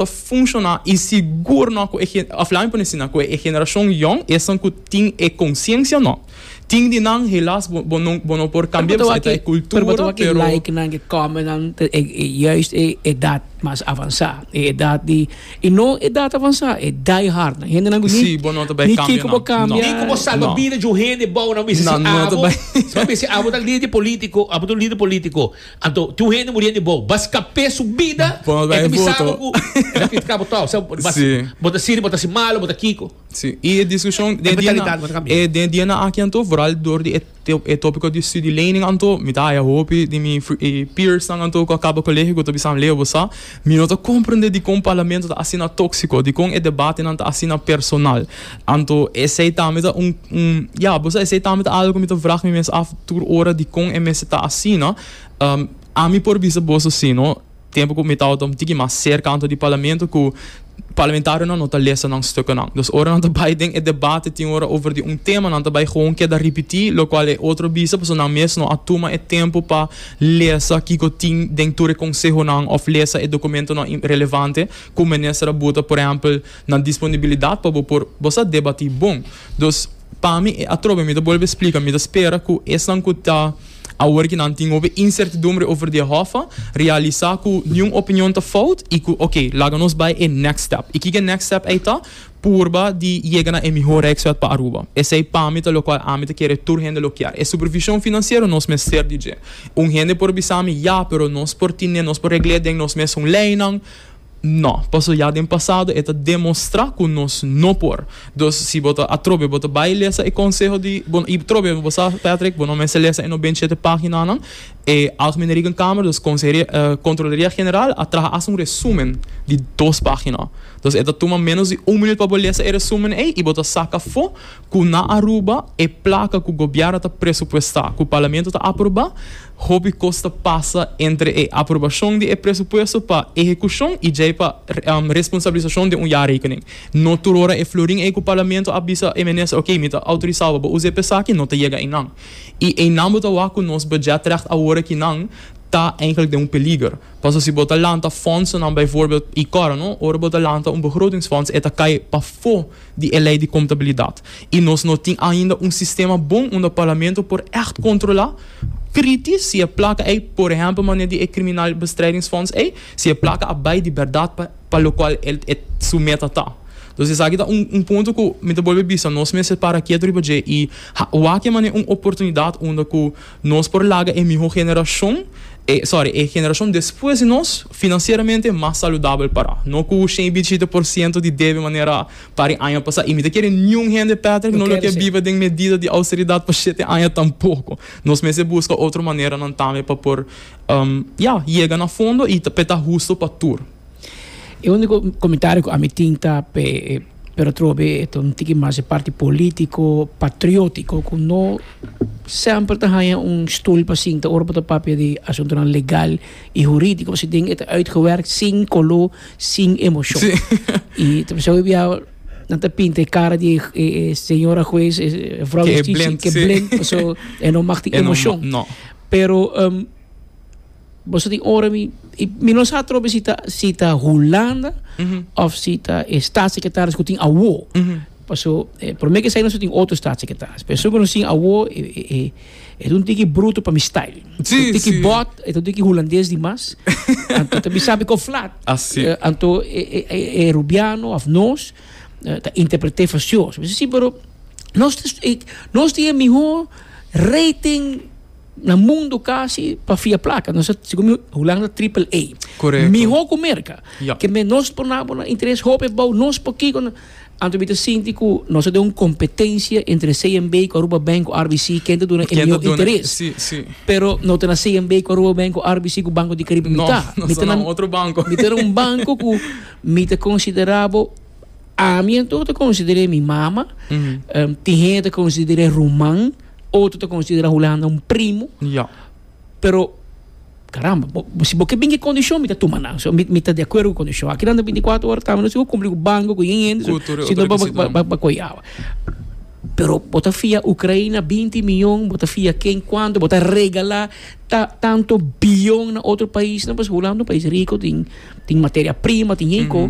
ta funciona y sigur no cu e of laat me pone asina cu e generacion jong esun cu tin e conciencia no tin di nan helas bo no bo no por cambia pasobra ta e cultura pero bo ta wak e like nan e comment nan ta e juist e edad mas avansa e edad di y no edad avansa e die hard nan hende nan cu ni bo no ta bay cambia nan no ni cu bo salba bida di un hende bou nan bisa si abo si bo a bisa si abo ta lider politico abo ta un lider politico. Anto, tin un hende muriendo di bou. Bas capé su bida. E ta bisabo cu e ta critica bo trouw. Sa bo bas, bo ta siri, bo ta haci malo, bo ta kico. Sí, y e discusion den e dianan, e den e dianan aki anto, vooral door di e topico di studielening anto, mi ta haya hopi di mi peersnan anto cu a caba colegio cu ta bisaam, Leo, bo sa. Mi no ta comprende dicon Parlamento ta asina toxico, dicon e debatenan ta asina personal. Anto esey tambe ta un, un, ya, bo sa, esey tambe ta algo cu mi ta vraag mi mes af tur ora dicon e mester ta asina. Ami por bisa boso si, no, tempo cu mi tabata un tiki mas cerca anto di Parlamento cu. Parlamentarionan no ta lesa nan stukennan. Dus ora nan ta bai den e debate tin ora over di un tema, nan ta bai gewoon keda ripití lokual e otro bisa pasobra nan mes no a tuma e tempu pa lesa kiko tin den tur e konsehonan òf lesa e dokumentonan relevante ku minister a buta, por ehèmpel, na disponibilidat pa bo por bo sa debatí bon. Dus pa mi e atrobe, mi ta bolbe splika, mi ta spera ku esnan ku ta. Awor ki nan tin hopi insertidumbre over di e hòffa, realisa ku niun opinion ta fout i ku oke, laga nos bai e next step. I kiko e next step ei ta? Purba di yega na e mihó rekswet pa Aruba. Esei pami ta lokual ami ta kere tur hende lo kier. E supervishon finansiero nos mester di dje. Un hende por bisami, Ya, pero nos por tine, nos por regl'é den nos mes un leinan. No, paso ya den pasado e ta demostra cu nos no por. Dus si bo ta atrobe bo ta bay lesa e conseho di, bo, y trobe bo sa Patrick, bo no mester lesa e noventa y shete paginanan, e Algemene Rekenkamer, dus Conseheria, eh, Controleria General a traha haci un resumen di dos pagina. Dus e ta tuma menos di un minuut pa bo lesa e resumen ey y bo ta saca afo, Ku na Aruba e plaka ku gobièrnu ta presupuestá, ku parlamento ta aprobá, hopi kos ta pasa entre e aprobashon di e presupuesto pa ehekushon i djei pa responsabilisashon den un jarekening. No tur ora e florin ei ku parlamento a bisa e minister, oké, mi ta outorisá bo pa bo us'é pa esaki, no ta yega einan. I einan bo ta wak ku nos budgetrècht awor akinan ta eindelijk den un peliger. Paso si bo ta lanta fondsonan, bijvoorbeeld i kòrda no, ora bo ta lanta un begrotingsfonds e ta kai pafó, di e Lei di Kontabilidat i nos no tin ainda un sistema bon unda Parlamento por ègt kontrolá priti si e plaka ei, por ehèmpel manera di e Kriminalbestrijdingsfonds ei, si e plaka a bai di bèrdat pa pa lokual e su meta ta. Entonces esaki ta un un punto ku mi ta bolbe bisa nos mester para kiet riba dje i wak e manera un oportunidat unda ku Nos por laga e miho generashon, e, sorry, e generashon despues di nos, finansieramente mas saludabel pará. No ku shen i bichita por siento di debe manera para e aña pasá. I mi ta kere niun hende, Patrick, no lo ke biba den medida di austeridat pa shete aña tampoko. Nos mester buska otro maneranan tambe pa por, um, ya, yega na fondo i ta, p'e ta husto pa tur. E unico comentario cu ami tin ta p'e pero trobe be e ta un tiki mas e parti politico, patriotico cu no semper ta haya un stoel pa sinta ora bo ta papia di asuntonan legal y juridico pasobra den e ta uitgewerk sin colo, sin emocion y ta pasaba e biaha nan ta pinta e cara di e señora huez e vrouw justicia ke blend pasobra e no mag tin emocion pero. Boso tin ora mi i mi no sa trobe si ta si ta Hulanda of si ta e staatssecretaris ku tin awo. Paso eh, por mi ke esei nos tin otro staatssecretaris. Pero esun ku nos tin awo e e e e ta un tiki bruto pa mi style. Sí, E ta un tiki sí. bot, e ta un tiki hulandes di mas. Anto ta bisa mi ku flat. Así. Eh, anto e e e e rubiano of nos eh, ta interpret'é fasioso. Mi bisa sí, pero nos ta e nos tin e mihó rating. Na mundo casi pa fia placa nos ta sico mi Hulanda triple A. Correcto. Miho cu Merca. Yep. Ke men nos por nabo na interes hopi bou nos por kiko na anto mi ta sinti ku nos ta den un kompetensia entre CMB ku Aruba Bank ku RBC ken ta duna e Ken ta mio duna- interes. si, si. Pero no ta na CMB ku Aruba Bank ku RBC ku Banco di Caribe mi No, ta. nos Mi ta ta na na- otro banco. Mi ta na un banco ku mi ta konsiderabo ami anto ta konsideré mi mama. Em, tin hende ta konsideré ruman. Otro ta considera Hulanda un primo. Ja. Pero, caramba, bo, si bo ke bin ki condicion, mi ta tuma nan. So, mi, mi ta de acuerdo cu condicion. Aki nan ta 24 horas tami, no si bo cumpli cu banco, cu yin hende, so, Cultura, si no, ba, ba, ba, ba coyawa. Pero bo ta fia Ucraina 20 miljon, bo ta fia ken cuanto, bo ta regala ta, tanto biljon na otro paisnan, pues Hulanda un pais rico, tin, tin materia prima, tin yin co.